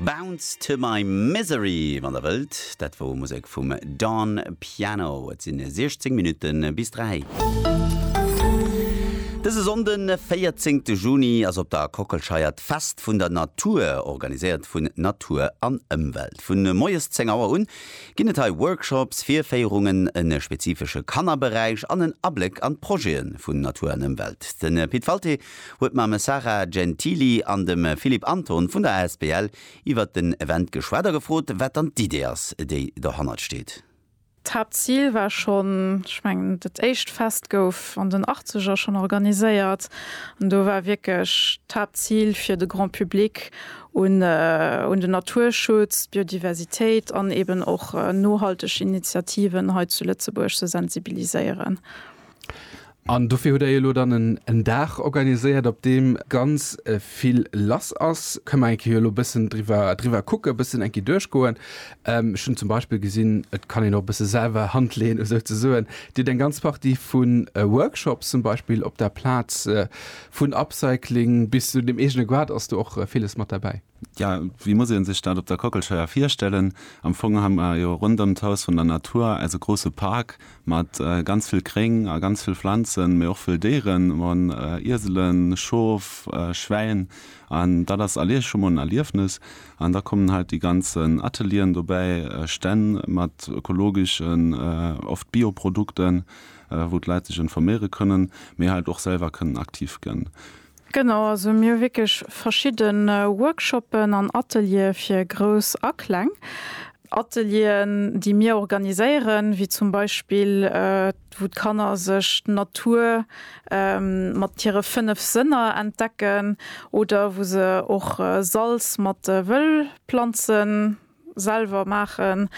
Bounce to my misery, wann der wëllt. Dat wor Musek vum Dawn Piano. Et sinn 16 Minutten bis 3. Dëse Sonnden, 14 Juni, ass op der Kockelscheier d'Fest vun der Natur, organiséiert vun Natur an Ëmwelt. Vu moies 10 Auer un ginn et hei Workshops, Virféierungen, e spezifesche Kannerberäich an en Abléck an d'Projete vun Natur an Ëmwelt. De Pit Walté huet mam Sara Gentili an dem Philippe Anton vun der asbl iwwert den Event geschwat a gefrot, wat dann d'Idee ass, déi dohannert steet. D'Haaptzil war schonn, ech mengen, dat éischt Fest gouf an den Achtzeger schonn organiséiert an do war wierklech d'Haaptzil, fir de Grand public un den Naturschutz, d'Biodiversitéit an eeben och nohalteg Initiativen hei zu Lëtzebuerg ze sensibiliséieren. An dofir hutt Der elo dann en Dag organiséiert, op deem ganz vill lass ass. Kënne mer eng Kéier elo e bëssen driwwer kucken, e bëssen eng Kéier duerchgoen? Ech hunn zum Beispill gesinn, et kann een och e bësse selwer Hand leeën esouzesoen. Dir hutt eng ganz Partie vu Workshops zum Beispill op der Plaz, vun Upcycling bis zu dem eegene Goart ass do och villes mat derbäi. Jo, wéi muss ee sech dat op der Kockelscheier virstellen? Am Fong hu mer jo ronderëm d'Haus vun der Natur eise grousse Park mat ganz vill Gréng a ganz vill Pflanzen, mee och vëll Déieren. Mer hunn Ieselen, Schof, Schwäin an dat ass allé scho mol en Erliefnes. An da kommen halt déi ganzen Atelieren dobäi, Stänn mat ökologeschen, oft Bioprodukten, wou d'Leit sech informéiere kënnen, mee halt och selwer kënnen aktiv gënn. Genau, also mir hu wierklech verschidde Workshoppen an Ateliere fir Grouss a Kleng. Atelieren, déi mir organiséieren, wéi zum Beispill wou d'Kanner sech d'Natur mat hire fënnef Sënner entdecken oder wou se och Salz mat Wëllplanze selwer maachen,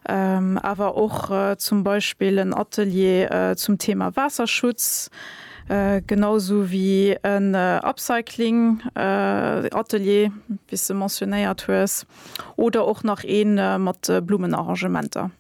awer och zum Beispill en Atelier zum Thema Waasserschutz, genau esou wéi en Upcycling Atelier, wéi s de mentionéiert hues, oder och nach ee mat Blummenarrangementer.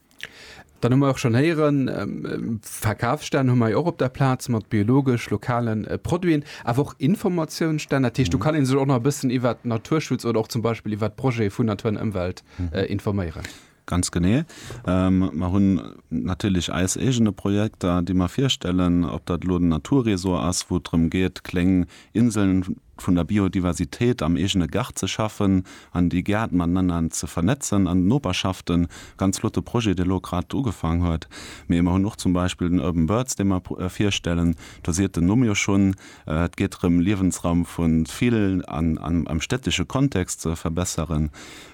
Dann hu mer och schonn héieren, Verkafsstänn hu mer jo och op der Plaz mat biologesch, lokale Produiten, awer och Informatiounsstänn. Dat heescht, do kann ee sech och nach e bëssen iwwert Naturschutz oder och zum Beispill iwwert d'Projete vun Natur an Ëmwelt informéieren. Ganz genee. Mer hunn natierlech eis eegene Projekter, déi mer virstellen, ob dat elo den Naturresort ass, wou et drëm geet, kléng Inseln vun der Biodiversitéit am eegene Gaart ze schaffen an déi Gäert matenanner ze vernetzen an d'Noperschaften, ganz flotte Projet, dee elo grad ugefaang huet. Mee mer hunn och zum Beispill den Urban Birds, dee mer virstellen, do seet den Numm jo schonn, et geet drëm Liewensraum vu vill an am städtesche Kontext ze verbesseren.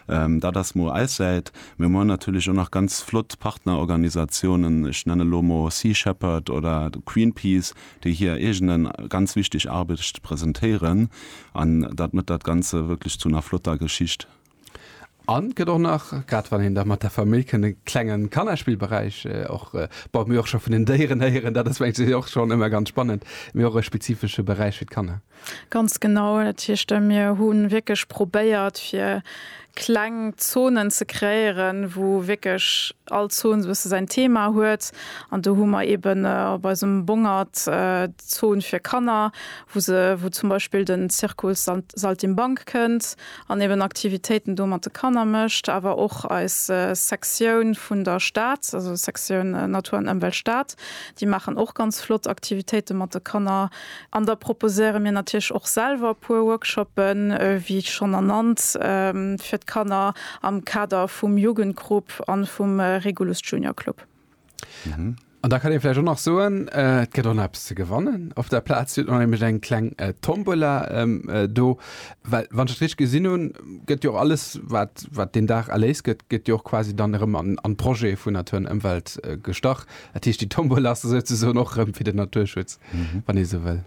Dat ass mol eis Säit. Mee mer hunn natierlech och nach ganz flott Partnerorganisatiounen, ech nenne lo mol Sea Shepherd oder Greenpeace, déi hir eegene ganz wichteg Arbecht presentéieren an dat mëtt dat ganze wierklech zu ner flotter Geschicht. An et gëtt och nach, grad wann een da mat der Famill kënnt, e klenge Kannerspillberäich och bei mir och scho vun den Déieren héieren, dat ass mengen ech och schonn ëmmer ganz spannend, mee och e spezifesche Beräich fir d'Kanner. Ganz genau, dat heescht mir hu wierklech probéiert fir kleng Zonen ze kreéieren, wou wierklech all Zon esou e bësse säin Thema huet. An do hu mer eeben op eisem Bongert d'Zon fir Kanner, wou se wou zum Beispill den Zirkus Saltimbanque kënnt an eeben Aktivitéiten do mat de Kanner mécht. Awer och eis Sektioun vun der Stad, also Sektioun Natur an Ëmwelt Stad, déi maachen och ganz flott Aktivitéite mat de Kanner. An da proposéiere mir natierlech och selwer e puer Workshoppen, wéi schonn ernannt, fir d'Kanner am Kader vum Jugendgrupp a vum Regulus Junior Club. An da kann ee vläicht och nach soen, et gëtt och nach eppes ze gewannen. Op der Plaz huet nämlech eng kleng Tombola do, well wann ech dat richteg gesinn hunn, gëtt jo och alles, wat wat deen Dag erléist gëtt, gëtt jo och quasi dann erëm an an Projet vun Natur an Ëmwelt gestach. Dat heescht, déi Tombola ass esou ze soen och erëm fir den Naturschutz. wann ee sou wëll.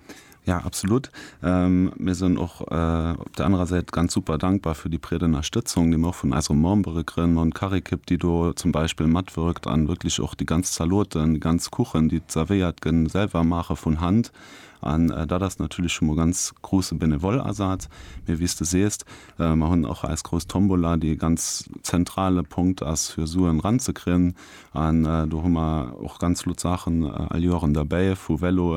Ja, absolut. Mir sinn och op der anerer Säit ganz super dankbar fir déi breet Ënnerstëtzung, déi mir och vun eisere Membere kréien. Mer hunn d'Karékipp, déi do zum Beispill matwirkt an wierklech och déi ganz Zaloten, déi ganz Kuchen, déi zerwéiert gënn, selwer maache vun Hand. An dat ass natierlech schonn mol ganz grousse Benevoll-Asaz. Mee wéi s de sees, mer hunn och eis grouss Tombola, déi e ganz zentrale Punkt ass, fir Suen eranzekriegen. An do hu mer och ganz flott Saachen all Joer eran derbäi, vu Véloen,